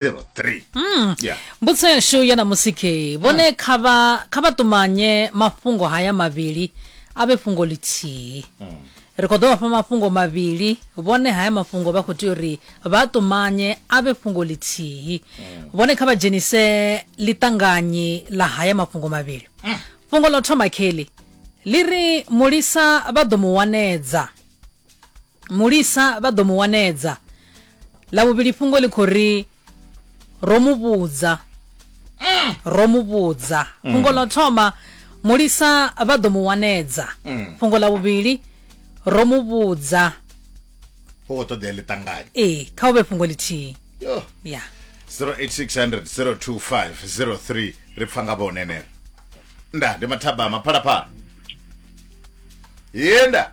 little three mm. yeah. mbudziso yashu ya namusi ke vhone mm. kha vha kha vha ṱumanye mafhungo haya mavhili a vhe fhungo lithihi mm. ri khou ḓo vha fha mafhungo mavhili vhone haya mafhungo vha khou tea uri vha ṱumanye a vhe fhungo lithihi mm. vhone kha vha dzhenise ḽiṱanganyi ḽa haya mafhungo mavhili mm. fhungo ḽo thoma kheli ḽi ri mulisa vha ḓo mu wanedza mulisa vha ḓo mu wanedza ḽa vhuvhili fhungo ḽi khou ri ro mu vhudza mm. ro mu vhudza mm. fhungo ḽo thoma mulisa vha ḓo mu wanedza mm. fhungo ḽa vhuvhili ro mu vhudza ho khou ṱoḓea ḽi ṱanganye ee kha u vhe fhungo ḽithihi ya 08600 025 03 ri pfa nga vhonenera nda ndi mathabama phalaphala yenda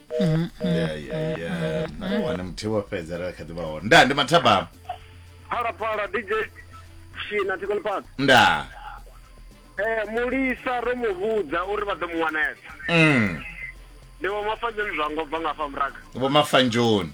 wana muthihi wo fhedza ra kha ḓivha hone nda ndi mathabama phalaphala dj shina tikoni pasi nda eh mulisa ro mu vhudza uri vha ḓo mu wanesa mm. ndi vho mafadzeni zwango bva nga fha muraga vho mafanjoni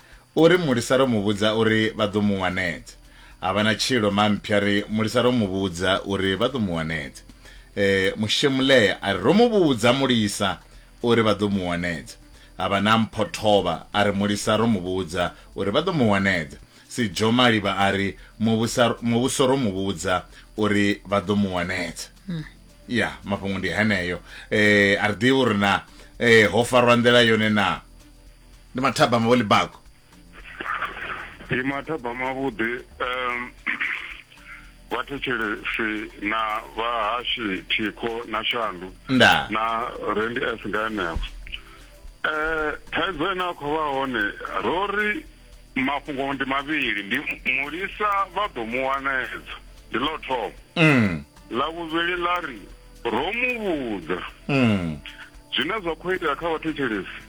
U ri, Mulisa ro mu vhudza uri vha ḓo mu wanedza. Ha vha na tshilo. Mamphya a ri, Mulisa ro mu vhudza uri vha ḓo mu wanedza. E, Mushemulea a ri, Ro mu vhudza Mulisa uri vha ḓo mu wanedza. Ha vha na Mphothovha a ri, Mulisa ro mu vhudza uri vha ḓo mu wanedza. Sidzhomalivha a ri, Muvhusa, Muvhuso ro mu vhudza uri vha ḓo mu wanedza. Ya, mafhungo ndi heneyo. E, a ri ḓivhi uri na e, ho farwa nḓila yone naa. ndi mathabama vho libago ndi mathabama vhuḓi um vhathetshelesi na vhahashi thikho na shandu nda na rendi s nga henefho um thaidzo ine a khou vha hone ro ri mafhungo ndi mavhili ndi mulisa vha ḓo mu wanedza ndi ḽo thoma mm ḽa vhuvhili ḽa ri ro mu vhudza mm zwine zwa khou itea kha vhathetshelesi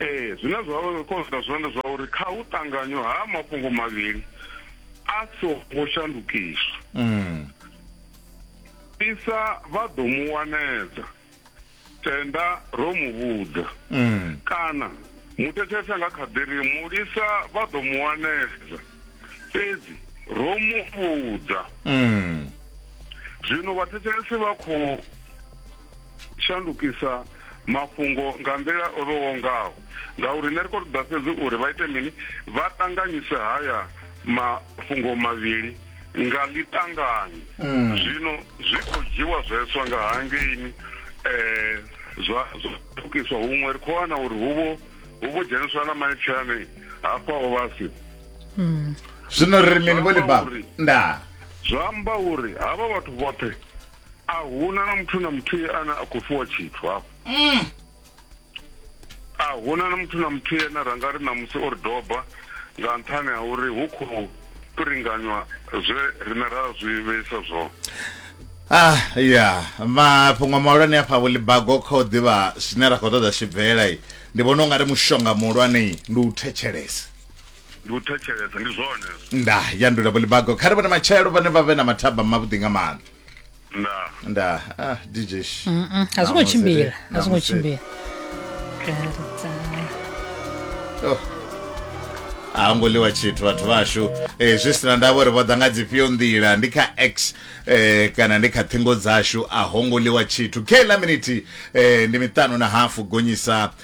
ee zwine zwa konsa zwone zwa uri kha u ṱanganywa ha mafhungo mavhili a songo shandukiswa mm. isa vha ḓo mu wanedza tenda ro mu vhudza mm. kana muthethesa nga kha ḓiri mulisa vha ḓo mu wanedza fhedzi ro mu vhudza mm. zwino vhathetshelesi vha khou shandukisa mafhungo nga nḓila o vhewaho ngaho ngauri nṋe ri khou ṱoḓa fhedzi uri vha ite mini vha ṱanganyise haya mafhungo mavhili nga ḽiṱangani mm. zwino zwi khou dzhiwa zweswa nga hangeini um zwa ṱukiswa huṅwe ri khou wana uri huvho hu vho dzheniswa na maipfhani hafha o vhasi mm. zwino ri mini vho ḽi ba nda zwa amba uri havha vhathu vhoṱhe a huna na muthu na muthihi ane a khou fhiwa tshithu hafho mm. a huna na muthu na muthihi ane ra nga ri ṋamusi o ri doba nga nṱhani ha uri hu khou fhiringanywa zwe rine ra zwi vheisa zwone Ah ya mafhungo mahulwane a phavho ḽibago kha u ḓivha zwine ra khou ṱoḓa tshibvela ndi vhona u nga ri mushonga muhulwane ndi u thetshelesa ndi u thetshelesa ndi zwone hezwo nda yandula bulibago kha ri vhone matshelo vhane vha vhe na mathaba mavhuḓi nga maanḓa ndaa nda ah, dj sh. Mm, mm, a zwo ngo Namusi, tshimbila a zwo ngo namusi. tshimbila Oh. a ho ngo ḽiwa tshithu vhathu vhashu eh, zwi sina ndavha uri vho ḓa nga dzifhio nḓila ndi kha x eh, kana ndi kha ṱhingo dzashu a ho ngo ḽiwa tshithu kla miniti eh, ndi miṱanu na hafu gonyisa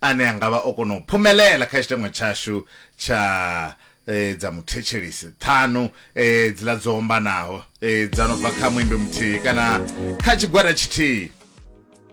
ane a nga vha o kona u phumelela kha tshiteṅwa tshashu tsha e, dza muthetshelisi ṱhanu e, dziḽa dzo ombanaho e, dza no bva kha muimbi muthihi kana kha tshigwada tshithihi